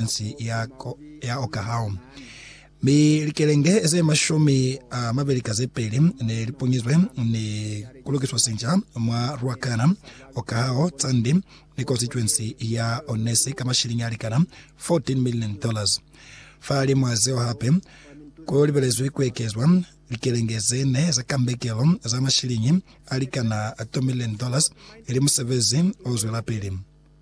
provinsi ya, ya Okahao. Mi likelenge ze mashumi a mabeli ka ze peli ne li punyizwe ni kulukiswa sinca mwa Ruacana, Okahao, Tsandi ni konsituensi ya Onesi ka mashilingi a likana 14 million dollars. Fa li mwa zeo hape, ku libelezwi ku ekezwa likelenge ze ne za kambekelo za mashilingi a likana 2 million dollars ili musebezi o zwelapili.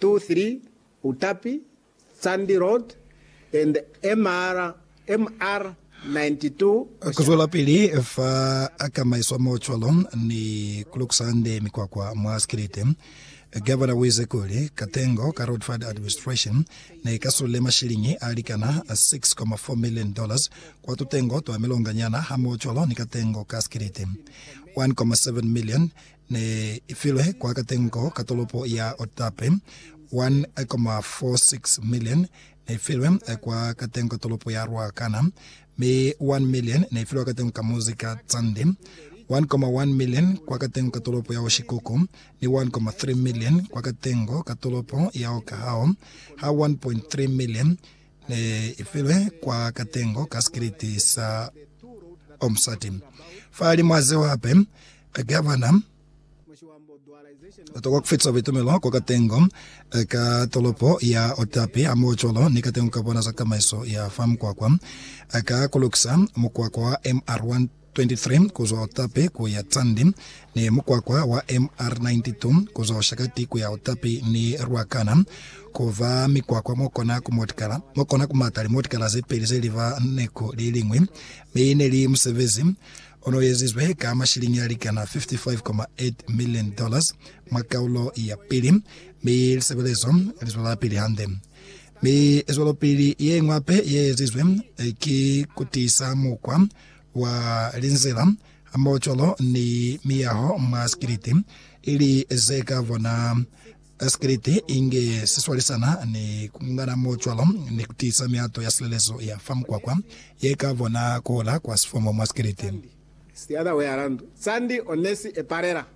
2, 3, Utapi, Tsandi Road, and MR, MR 92, Kuzwelapili fa kamaiswa mo cwalo ni kulukusa hande mikwakwa mwa sikiliti. Gavana uize kuli, katengo ka Road Fund Administration ne ka sulile mashiliñi a likana 6.4 million dollars kwa tutengo twa milonganyana hamoho cwalo ni katengo ka sikiliti 1.7 million ne i filwe kwa katengo ka tolopo ya Otape, 1,46 milioni ne i filwe kwa katengo ka tolopo ya Ruacana, mi 1 milioni ne i filwe kwa katengo ka muzi ka Tsandi, 1,1 milioni kwa katengo ka tolopo ya Oshikuku, ni 1,3 milioni kwa katengo ka tolopo ya Okahao, ha 1,3 milioni ne i filwe kwa katengo ka sikiliti sa omusati. Fa li mwa zeo hape, gavana o tokwa ku fetisa buitumelo kwa katengo ka tolopo ya Otapi hamohocwalo ni katengo ka bona za tamaiso ya fa mukwakwa ka ku lukisa mukwakwa wa MR1 23 kuzwa Otapi kuya Tsandi, ni mukwakwa wa MR92 kuzwa Oshakati kuya Otapi ni Ruacana, kuba mikwakwa mokona kumotikala, mokona kumata limotikala zepeli zeliba neku liliñwi, mi neli musebezi onoezizwe ka mashilingi alikana 55.8 million dollars mwa kaulo yapili, mi lisebelezo lizwelapili hande. Mi zwelopili yeñwi hape yeezizwe ki kutiisa mukwa wa linzila, mocolo, ni miyaho mwa sikiliti, ili ze ka bona sikiliti inge si swalisana ni ku ngana mocolo ni ku tiisa mihato ya silelezo ya fa mukwakwa ye ka bona ku hola kwa sifomo mwa sikiliti. It's the other way around. Sandy o ne si epalela.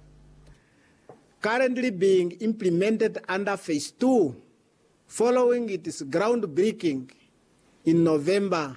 Currently being implemented under phase two following its groundbreaking in November